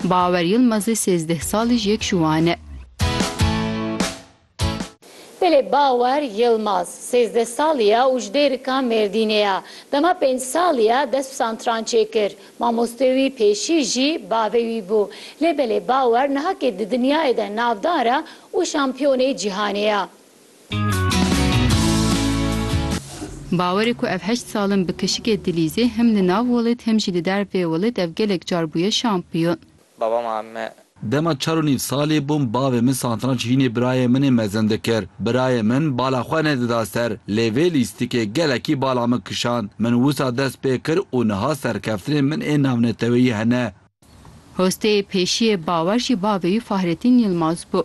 Bawer Yilmazê sêzdeh salî ji yek ji wan e. Belê Bawer Yilmaz sêzdeh salî ye û ji Dêrika Mêrdînê ye. Dema pênc salî ye dest bi santrançê kir. Mamosteyê wî pêşî jî bavê wî bû. Lê Belê Bawer nihakê di dinyayê de navdar e û şampiyonê cîhanê ye. Bawer e ku ev heşt salin bi kişikê Dilîzê him li nav welêt him jî li dervê welêt ev gelek car bûye şampiyon. Baba ma me. Dema çar û nîv salî bûm bavê min santranç hînê birayê min ê mezin dikir. Birayê min bala xwe nedida ser lê vê lîstikê gelekî bala min kişand. Min wisa dest pê kir û niha serkeftinên min ê navneteweyî hene. Hosteyê pêşiyê Bawer jî bavê wî Fahretîn Yilmaz bû.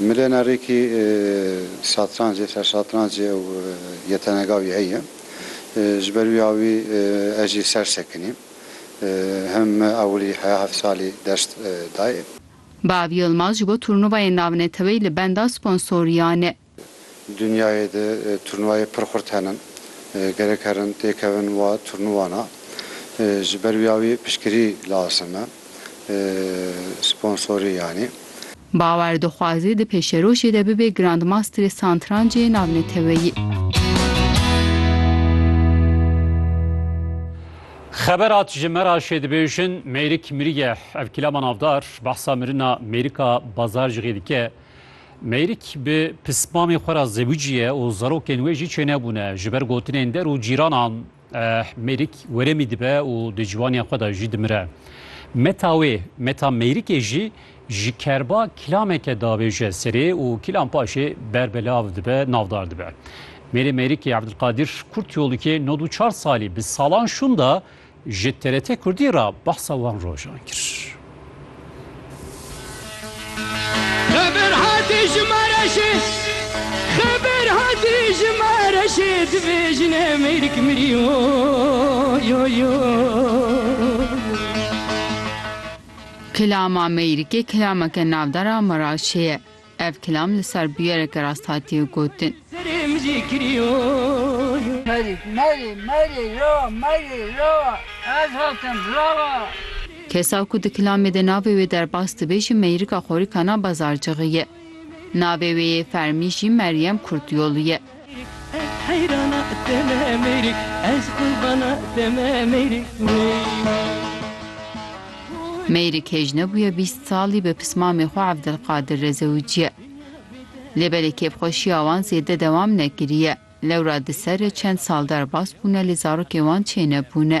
Milena Rêkî satrancê, sersatrancê ew yetenega wî heye. Ji ber wî awî ez jî ser sekinî. Him me ewilî heya heft salî dest dayê. Bav Yilmaz ji bo turnuvayên navneteweyî li benda sponsoriyan e. Dunyayê de turnuvayê pir xurt hene. Gerek herin têkevin wa turnuwana. Ji ber wiya wî piştgirî lazim e. Sponsorî yanî. Bauer dixwaze di pêşerojê de bibe Grandmasterê Santrancê navneteweyî. Xeber hat ji Meraşê dibêjin Mêrik miriye. Ev kîlama navdar behsa mirina Mêrika Bazarcixê dike. Mêrik bi pismamê xwe re zewicî ye û zarokên wê jî çênebûne. Ji ber gotinên der û cîranan Mêrik weremî dibe û di ciwaniya xwe de jî dimire. Meta wê, meta Mêrikê jî ji kerba kilameke diavêje serê û kilam paşê berbelav dibe, navdar dibe. Mêrê Mêrikê Ebdulqadir Kurtyolukê nod û çar salî bi salan şûnda Ji TRT Kurdî re behsa wan rojan kir. Xeber hatî ji me re jî Xeber hatî ji me re jî divê jine mêrik mirî wo yo yo Kilama mêrikê kilameke navdar a Meraşê ye. Ev kilam li ser bûyereke rast hatiye gotin. Kesa ku di kilamê de navê wê derbas dibe jî Meyrika Xorîkana Bazarcixî ye. Navê wê yê fermî jî Meryem Kurtyolu ye. Mêrik hêj nebûye bîst salî bi pismamê xwe Evdilqadir Rezewiciye. Lê belê kêfxweşiya wan zêde dewam nekiriye. Lewra di serre çend sal derbas bûne lê zarokên wan çênebûne.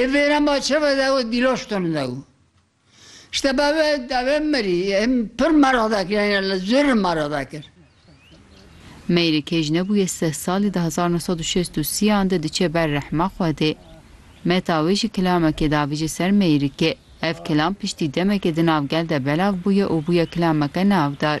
Ê vêra ma çewe de û dîloşton de û işte bavê davê mirî em pir meraq dakir yanî li zûr meraq dakir. Meyrê kej nebûye seh salî di hezar no sed û şêst û sî yan de diçe ber rehma Xwedê. Meta wê jî kilamekê davije ser Meyrikê. Ev kilam piştî demekê di nav gel de belav bûye û bûye kilameke navdar.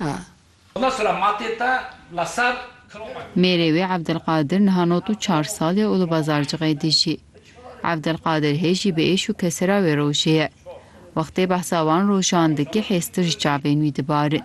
a. Mêrê wê Evdilqadir niha nod û çar sal ye û li Bazarcixê dijî. Evdilqadir hê jî bi êş û kesira wê rojê ye. Wextê behsa wan rojan dike hêztir ji çavên wî dibarin.